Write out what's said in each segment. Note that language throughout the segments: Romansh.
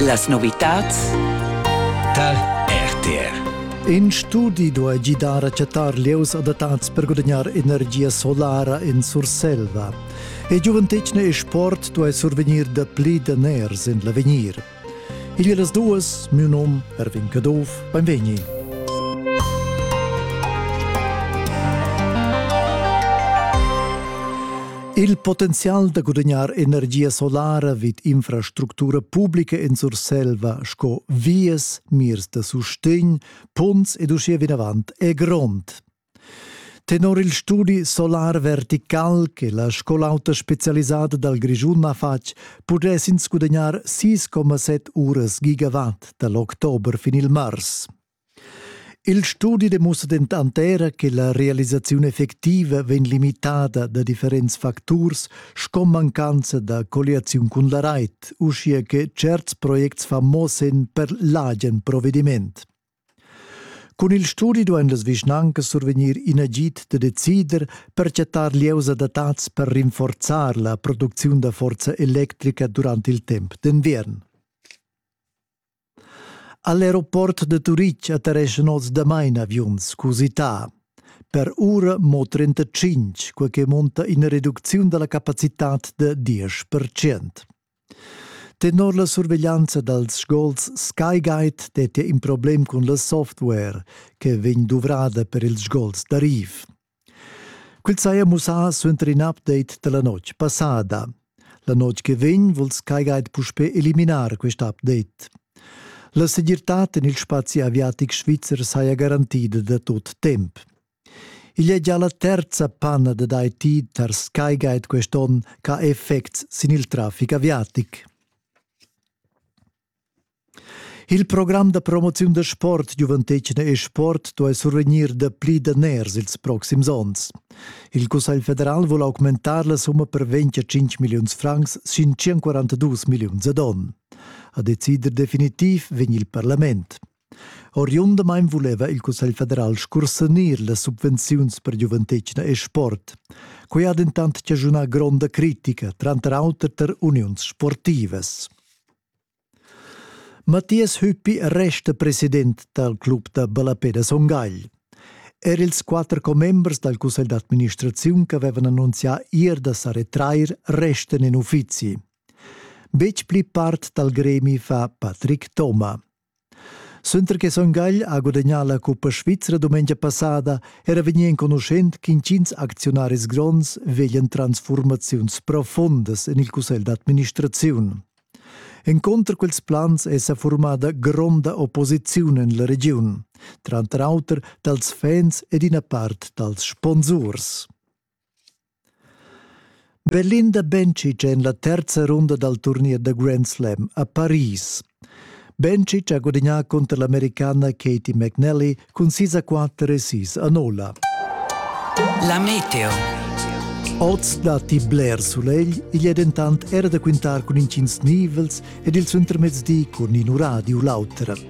Las novitads tar RTR. In studi duai gidar a chattar lieus adattads per gudagnar energia solara en Surselva. E giuventetgna e sport duai survegnir da pli daners en l'avegnir. Il e las duas, miu nom Erwin Caduff, benvegni. Il potenzial da gudagnar energia solara vid infrastructura publica in Surselva sco vias, mirs da sustegn, punts ed uschia vinavant è grond. Tenor il studi Solar Vertical che la scola auta specialisada dal Grischun ha fatg, pudess ins gudagnar 6,7 uras gigawatt dal october fin il mars. Il studi demussa dentant era che la realisaziun effectiva vegn limitada da differents facturs sco mancanza da colliaziun cun la rait, uschia che certs projects fan mo senn per l'agen provediment. Cun il studi duain las vischnancas survegnir in agid da decider per chattar lieus adattads per rinforzar la producziun da forza electrica durant il temp d'enviern. All'aeroport da Turitg attereschan oz damain aviuns cusità. Per ura mo 35, quai che munta ina reducziun da la capacitad da 10 Tenor la surveglianza dals sgols SkyGuide dettia in problem cun la software che vegn duvrada per ils sgols d'arriv. Quel saja mussà suenter in update da la notg passada. La notg che vegn vul Skygate puspè eliminar quest update. La segirtad en il spazi aviatic svizzer saja garantida da tut temp. Igl è già la terza panna dad IT tar Skygate quest'onn ch'ha effects sin il traffic aviatic. Il program da promoziun da sport giuventetgna e sport duai survegnir dapli daners ils proxims onns. Il Cussegl federal vul augmentar la summa per 25 milliuns francs sin 142 milliuns ad onn. A decider definitiv vegn il parlament. Oriundamain vuleva il Cussegl federal scursanir las subvenziuns per giuventetgna e sport. Quai ha dentant chaschunà gronda critica, tranter auter tar uniuns sportivas. Mattias Hüppi resta president dal club da ballapè da Son Gagl. Er ils quatter commembers dal cussegl d'administraziun ch'avevan annunzià ir da sa retrair restan in uffizi. Betg pli part dal gremi fa Patrick Thoma. Suenter che Son Gagl ha gudagnà la cuppa svizra dumengia passada era vegnì enconuschent ch'intgins acziunaris gronds veglian transfurmaziuns profundas en il cussegl d'administraziun. Enconter quels plans è sa formada gronda opposiziun en la regiun, tranter auter dals fans ed ina part dals sponsurs. Belinda Bencic en la terza runda dal turnier da Grand Slam a Paris. Bencic ha gudagnà cunter l'Americana Katie McNally cun sis a quatter e sis a nolla. La meteo. Oz datti bler sulegl, igl è dentant era da quintar cun intgins nivels ed il suentermezdi cun in uradio l'auter.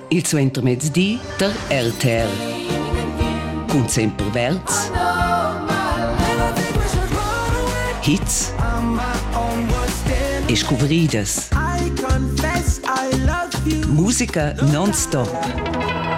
il suentermezdi tar RTR. Cun Semper Verds. Hits e scuvridas. Musica non-stop.